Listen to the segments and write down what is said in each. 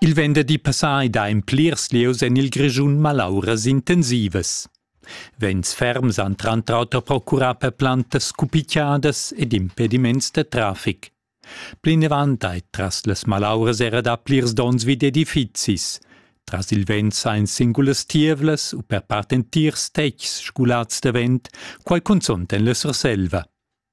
Il venderdi passà ei da en plirs lieus en il Grischun malauras intensivas. Vents ferms han tranter auter procurà per plantas scupicciadas ed impediments da traffic. Plinavant ei tras las malauras era da plirs donns vid edifizis. Tras il vent ein singulas tievlas u per part entirs tetgs sgulats da vent, quai cunzont en la Surselva.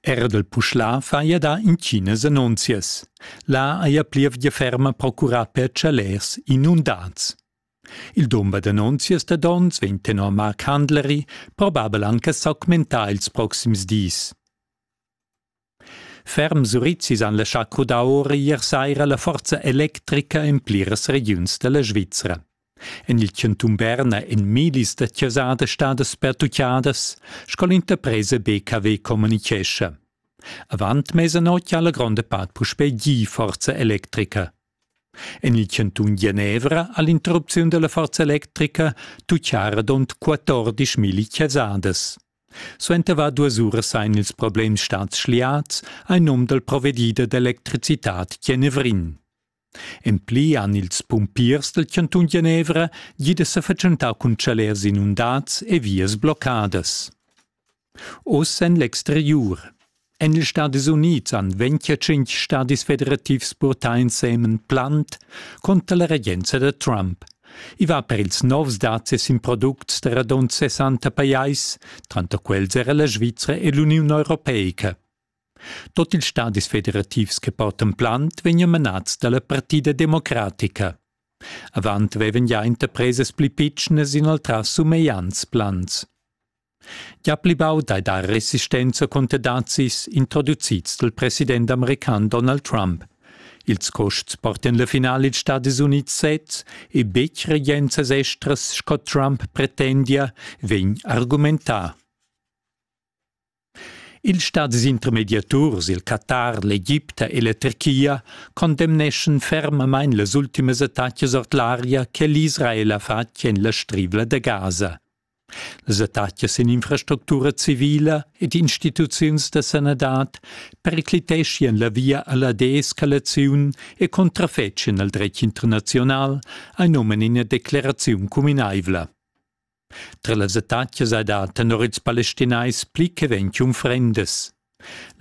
Erdel Puschlà faja dà intginas annunzias. Là haja plievgia ferma procurà per chalers inundats. Il dumber d'annunzias da donns vegn tenor Mark Handlery probabel anche s'augmentà ils proxims dis. Ferm Surizis han laschà crudar ora ier saira la forza electrica en pliras regiuns da la Svizra. En il chantun Berna èn millis da chasas stadas pertutgadas, sco l'interpresa BKW communitgescha. Avant mesanotg ha la gronda part puspè gì forza electrica. En il chantun Genevra ha l'interrupziun da la forza electrica tutgà radund 14 mil chasadas. Suenter var duas uras ein ils problems stads schliats ein num dal provedider d'electricitad Genevrin. En pli han ils pumpiers dal chantun Genevra gì da sa fatschentar cun chalers inundads e vias bloccadas. Oz en l'exteriur. En ils Stadis Unids han 25 stadis federativs purtà ensemen plant contra la regenza da Trump. I va per ils novs dazis in products da radund 60 pajais, tranter quels era la Svizra e l'Uniun Europeica. Tut ils stadis federativs che portan plant vegnan manads da la Partida democratica. Avant vevan gia interpresas pli pitschnas inoltrà sumegliants plans. Gia pli baud hai dà resistenza cunter dazis introducids dal president american Donald Trump. Ils custs portan la finale ils Stati Unids sez e betg regenzas estras sco Trump pretendia, vegn argumentà. Ils stadis intermediaturs, il Qatar, l'Egipta e la Turchia, condemneschan fermamain las ultimas attacas ord l'aria che l'Israel ha fatg en la Strivla da Gaza. Las attacas en infrastructura civila ed instituziuns da sanadad pericliteschian la via a la deescalaziun e contrafetschan al dretg internaziunal, ein omen ina decleraziun cuminaivla. Tra las attacas ei dat tenor ils palestinais pli che ventg unfrendas.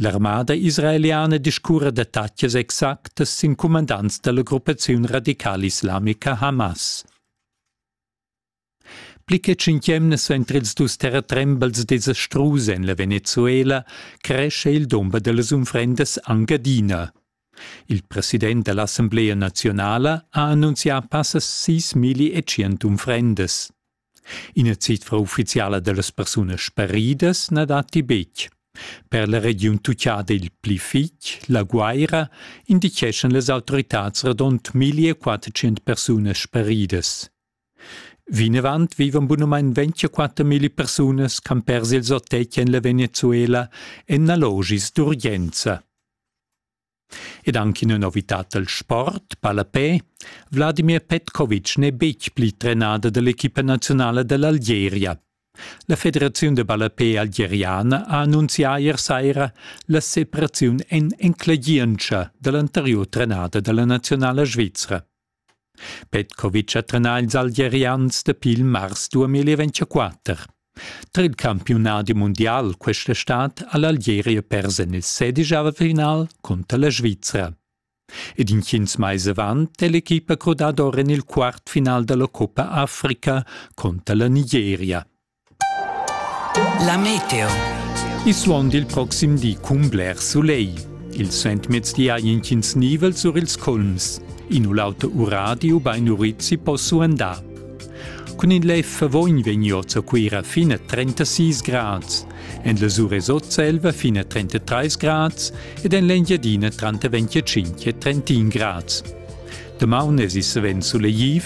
L'armada israeliana discurra d'attacas exactas sin cumandants dalla gruppaziun radicala islamica Hamas. Pli che tschient emnas ventr ils dus terratrembels desastrus en la Venezuela cresce il dumber dallas unfrendas Engadina. Il president da l'assamblea naziunala ha annunzià passas sis milli e tschient unfrendas. Ina cifra uffiziala da las persunas sparidas na datti betg. Per la regiun tucciada il pli fitg, la Guaira, indicheschan las autoritads radund 1400 persunas sparidas. Vinavant vivan bunamain 24.000 persunas campers ils otg en la Venezuela en allogis d'urgenza. Ed anche in novitad del sport, palapè, Vladimir Petkovic n'è betg pli trenada dell'equipa nazionala dell'Algeria. La Federaziun de Ballapè Algeriana ha annunzià ier saira la separaziun en enclegientscha dell'anteriur trenada della nazionala svizra. Petkovic ha trenà ils Algerians dapi il mars 2024. Tra il campiunadi mundial questa stad ha l'Algeria pers en il sedigiava final cunter la Svizra. Ed intgins mais avant è l'equipa crudada or en il quart final da la Coppa Africa cunter la Nigeria. La meteo. Il suon dil proxim di cun bler sulegl. Il Sentmezdi ha intgins nivel sur ils culms. In u l'auto uradi ubain urizzi po suandar. Cun in lef vogn vegniot a Cuira fin a 36 grads, en la Suresozzelva fin a 33 grads ed en l'Engiadina tranter 25 e 31 grads. Damaun es i savens sulegliv,